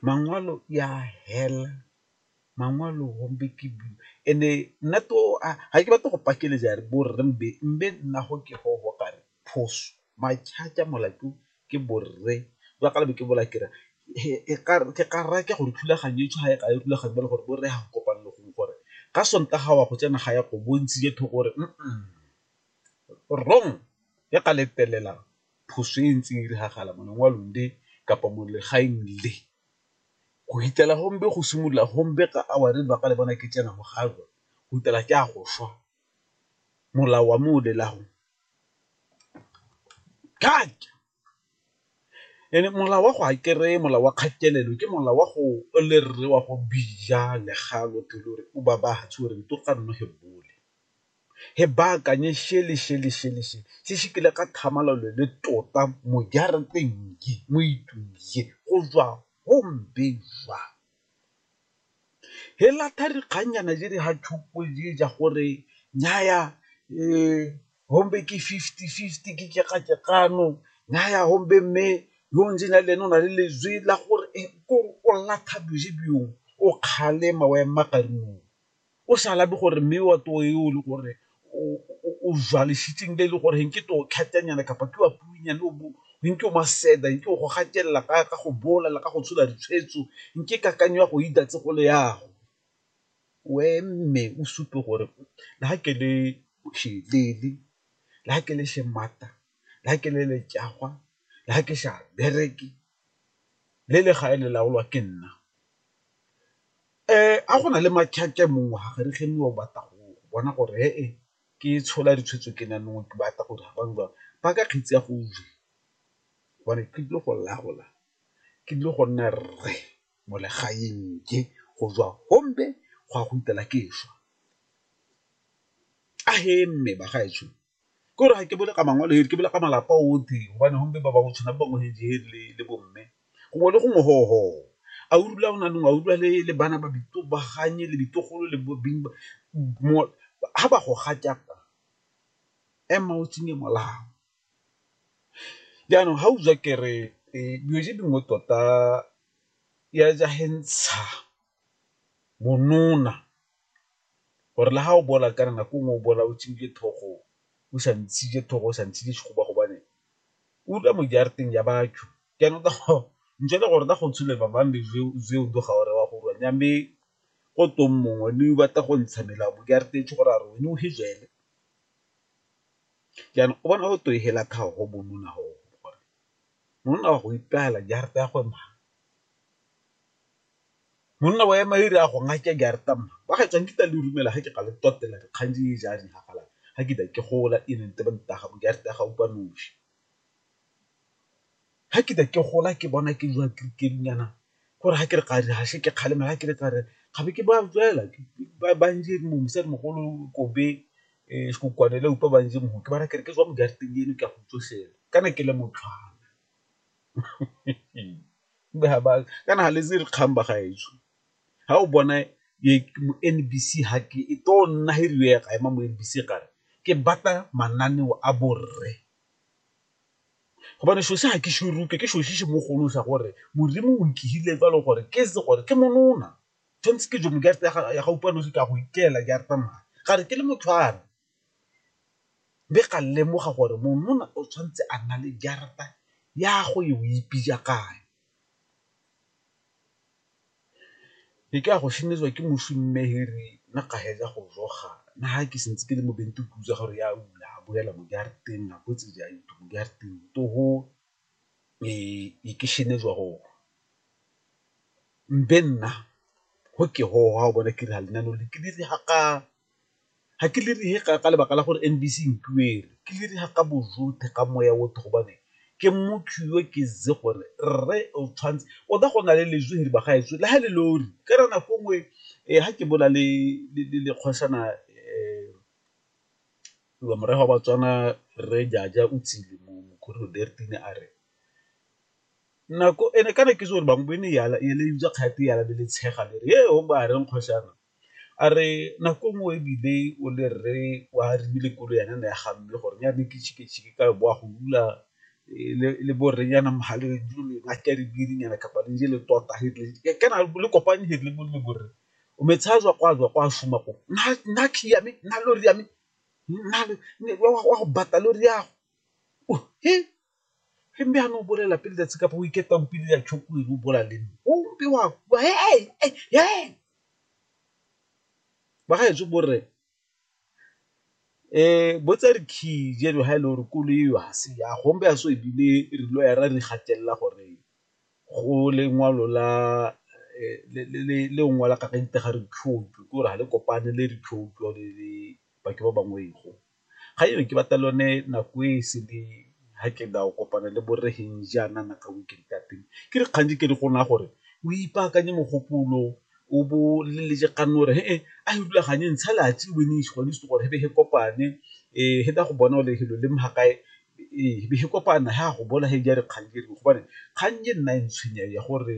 Maṅwalo ya hela maṅwalo gompe ke and-e nna to ga ke batle go pakeletsa yare bo rre mbe, mbe nna go ke go go kare phoso molato ke bo rre jwa ka le be ke bola ke re ke ka raya ke gore thulaganyo e tshwana jaaka e rulagangwa jalo gore bo rre ga go kopane le gongwe gore ka sontaga wa go tsena ga ya go bontshitse thoko gore wrong ya ka letelelang. phoso e ntse e diragala mo lengwalong le kapa mo legaeng le. Go fitlhela gombe go simolola gombe ka hour ba ka le bona ke tsena mo ga lona go fitlhela ke a go swa, molao wa mo lela'ago and-e molao wa go a kere molao wa kgatelelo ke molao wa go le rre wa go bija le ga lo thuli o re o babatse o re . He baakanye šele, šele, šele, šele, se se kile ka thamalalo le tota mo jarateng ye, mo itung ye, go jwa go mbe jwa. He latha dikgannyana je di ha tšhupo je ja gore, nnyaya, hombe ke fifty, fifty ke tšekatekano, nnyaya hombe mme yo o ntseng jalo ene o na le lejwe la gore, kore o latha boje byong, o kgalema o ema ka dinao. o sa labe gore mme wa toro e o le gore o jwalesitseng le e le gore ke toro kgatelnyana kapa ke wa puinyane o bo nke o maseda nke o go gatelela ka ka go bolela ka go tshola ditshwetso nke kakanyo ya go itatse go le yago o eme o supe gore le ga ke le shelele le ga ke le shemata le ga ke le letšagwa le ga ke sa bereke le legae le laolwa ke nna, a go na le mongwe ga re ge mongwe o batla go bona gore he ke tshola ditshwetso ke nna nosi ke batla gore ba bangwe ba ka kgetsi ya go gobane ke tlile go laola ke tlile go nna rre mo legaeng ke go tswa gompe go ya go fitlhela ke swa, a he mme bagaetsho Ke gore ga ke bole ka mangwele hedi ke bole ka malapa otlhe gobane gompe ba bangwe tshwana ba bangwe hedi hedi le le bo mme gongwe le gongwe ho ho a o dula o na le ngwana o dula le le bana ba bana le ditlogolo le bo beng ha ba go ga jaana ema o tsenye molao. Jaanong ga o ja kere dilo tse dingwe tota ya ja ge ntsha monona, gore le ga o bola kana nako nngwe o bola o tshwerwe ke thogo, o sa ntshitse thogo, o sa ntshitse sehuba gobane o dula mo jarateng ya batho, jaanong gotwe mongwe ne o batla go ntsha mela mo jarateng gore a re wena o he jele, jaanong o bona gotwe hela tlhago monona oo, monona wa go ipela jarata ya gwe . Monna wa ema iri a go ngake ke a re tamma ba ga tswang kita le rumela ga ke ga le totela di kgang di ja di hafala ga ke da ke gola e nente ba ntaga bo ke a re taga upa noši ga ke da ke gola ke bona ke jwa ke ke nyana gore ga ke re ga di hashe ke kgalema ga ke re tsare ga be ke ba jela ke ba ba nje mo mosadi mogolo ko be e go kwane le upa ba nje mo ke ba ra ke re ke jwa mo ke a re teng eno ke a go tsoshela kana ke le motlhwa kana ga le itse dikgang ba gaetsho, ga o bona N_B_C ga ke e tlo nna e rile ya ema mo N_B_C e kare ke batla mananeo a borre gobane selo se ga ke se rutwa ke selo se se mogolo sa gore modimo o nkegile fa e le gore ke itse gore ke monona tshwanetse ke ya ga o utlwa nosi ke a go itela ke a tsamaya gare ke le motho . Mme ga lemoga gore monona o tshwanetse a nna le jarata ya go e o ipija kae. Ke ka go šemetswa ke moswi mme he re nna ga fetsa go jo ga nna ha ke sentse ke le mo bente ke utlwa gore ya ula a boela mo jarateng a botse ja itho mo jarateng to ho e ke šemetswa go mme nna go ke go ha o bona ke re ga lenaneo le ke le ga ka. ga ke le reye ka lebaka la gore N_B_C e ntuele, ke le reye ka bojotlhe ka moya otlhe gobane ke motho yo ke itse gore rre o tshwanetse, o ka go na le lejwe he ba gaetsho le ha e le lori ke re nako nngwe ha ke bola le kgoshana morafe wa Batswana rre Jaja o tsile a re nako and-e kana ke itse gore bangwe e ne e le utlwa kgati ya be le tshega le re he o ba reng kgoshana A re nako nngwe e bile o le rre wa rile koloi ya nna ya ga mme gore ya ne ke ka boa go rula le bo rre yana mo gale ke re biri nyana kapa le je le tota kana le kopane he le le bo rre o me tsaya jwa kwa jwa kwa šoma ko nna key ya me, nna lori ya me, nna wa go bata lori ya go . Re mbe a no bolela pele letsatsi kapa o iketa o pele ya choku e o bola le nna. O mbe wa kwa he he he. Ba ga etse borre eh bo tsa re key jeno ha e le gore koloi eo ha se ya go mbe a so ebile re lo ya ra re gatelela gore go le ngwalo la le o ngwala ka ga itega re ke gore ga le kopane le re le bake ba bangwe go. Ga eo ke batla lone nako e sele ha ke na o kopana le borre jaana na ka weekend ka teng ke dikgang di ke di go naya gore o ipaakanye mogopolo o bo o leletse kgang o re he e a e rulaganye ntsha gore he be he kopane he tla go bona gore helo le mo ga kae be he kopana he a go bona he ja dikgang gobane kgang e nna e ntshwenya ya gore.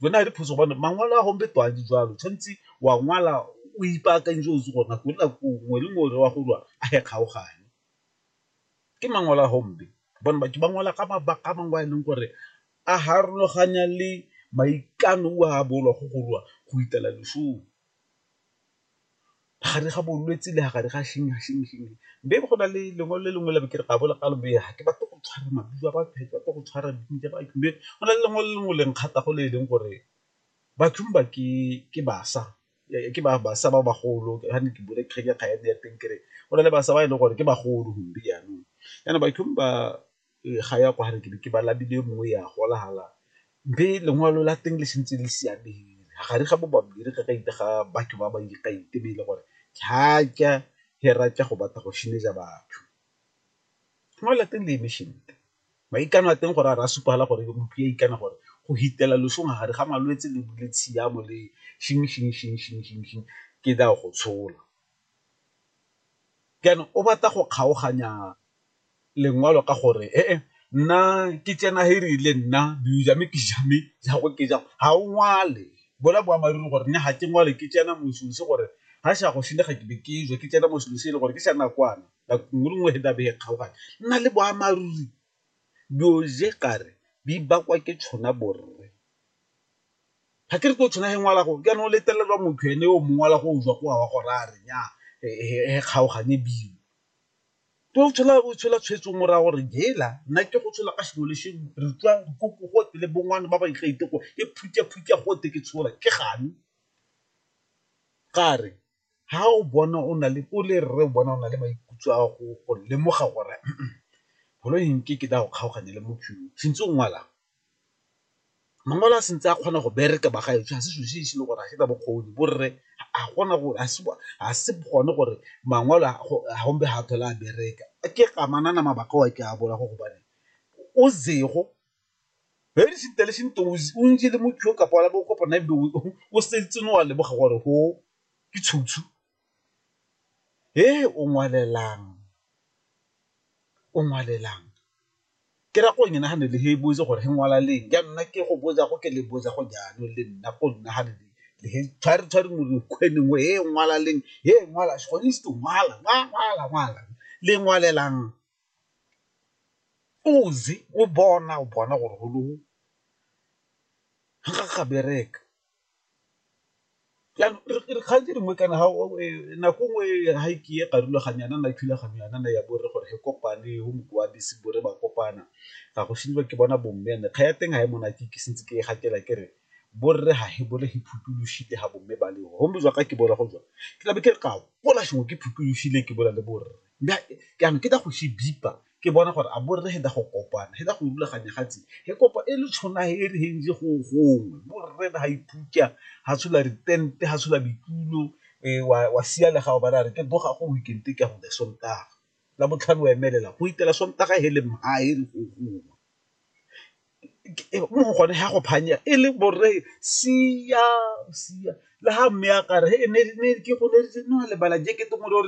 Jone a le phoso gobane mangwalo a gombe to a di jalo tshwanetse wa ngwala o ipaakantse o se gona go nna nngwe le nngwe wa go lwa a e kgaogane. Ke mangwalo a gombe gobane batho ba ngwala ka mabaka a mangwe a e leng gore a harologanya le maikano a bolwa go go lwa go itela lesome. gare ga bolwetse le gare ga be go na le lengwe le lengwe le ke re ga bo le kalo ga ke batle go tshwara maduo a batho ba tle go tshwara go na le lengwe le lengwe le nkgatha go le e leng gore bathong ba ke ke bašwa ke ba bašwa ba bagolo ga ne ke bone kgang ya kgaitsadi ya teng ke re go na le bašwa ba e leng gore ke bagolo gompieno jaanong bathong ba. ga ya kwa ke be ke ba labile e mongwe ya gola hala mme lengwalo la teng le santse le siame gare ga bo babedi ga batho ba ba ikaitebeile gore ga ke a hera ke go batla go batho. Lengwalo la teng le eme sentle, maikano a teng gore a re a supa fela gore motho ya ikana gore go hitela losong ga gare ga malwetse le tshiamo le ke tla go tshola. jaanong o batla go kgaoganya lengwalo ka gore e e nna ke tsena he rile nna mme ke ja mme jago ke jang ga o ngwale bola boammaaruri gore ne ga ke ngwale ke tsena moswi se gore ga sa go senya ga ke be ke jwa ke tsena moswi se e le gore ke sa nakwana nako nngwe le nngwe he dabe e kgaoganya nna le boammaaruri dilo je kare di bakwa ke tshona borre. ga ke re ko tshwana ge ngwala go ke no letlelelwa motho ene o mongwe la go jwa go wa go raya re nya he kgaogane bile ke o tshola o tshola tshwetso mo raya gore hela nna ke go tshola ka sengwe le sengwe re utlwa ko gote le bongwana ba ba ikgethe gore ke phutha phutha gote ke tshola ke gane ga re. ga o bona o na le o le rre o bona o na le maikutlo a go lemoga gore koloi e nke ke tla go kgaogane le motho yo santse o ngwala, mangwalo a santse a kgona go bereka ba ga ešo ga se selo se e se le gore ga se na bokgoni borre ga gona gore ga se gone gore mangwalo a gompe ga a tlhole a bereka ke amanang mabaka ao a ke a bola gore gobane o sego He di sintha le sintha o ntse le motho yo kapa wa bo kopana ebe o setse no wa leboga gore go ke tshutshu he o ngwalelang o ngwalelang ke ra go nagane le he bo itse gore he ngwala leng ya nna ke go botsa go ke le botsa go jalo le nna go nna ga le le he tshware tshware mo re kgweneng he ngwala leng he ngwala gone se ngwala ngwala ngwala le ngwalelang Ozi o bona o bona gore go low ga ga bereka dikgang tse dingwe kana ga nako nngwe ga e ke e ka rulaganya yana na thulaganyo yana na ya bo rre gore re kopane go mongwe wa bese bo re ba kopana ga go šediwa ke bona bo mme and-e kgang ya teng ga e monate ke santse ke e gatela ke re bo rre ga e bole he phuthulošitse ga bo mme ba le go mme jwa ka ke bola go jwa ke tlabe ke re ke a bola ke phuthulošitse ke bola le bo rre. Mme ke a no, ke ta go shi bipa, ke bona gore a bo rre he da go kopana, he da go rulaganya gatsi, he kopa e le tshona he e re he nje go gongwe, bo rre da ha ipuka, ha tshola ritente, ha tshola bitulo, wa, wa siya le ga o bala, a re ke boga go weekend-e ke a go Sontaga. Labotlhano wa emelela, go itela Sontaga he le mha he re go gongwe. Mo go gone he a go phanya, e le bo rre siya, siya, le ha mme a ka re he ne, ne ke go ne re no lebala jekete mo re o re.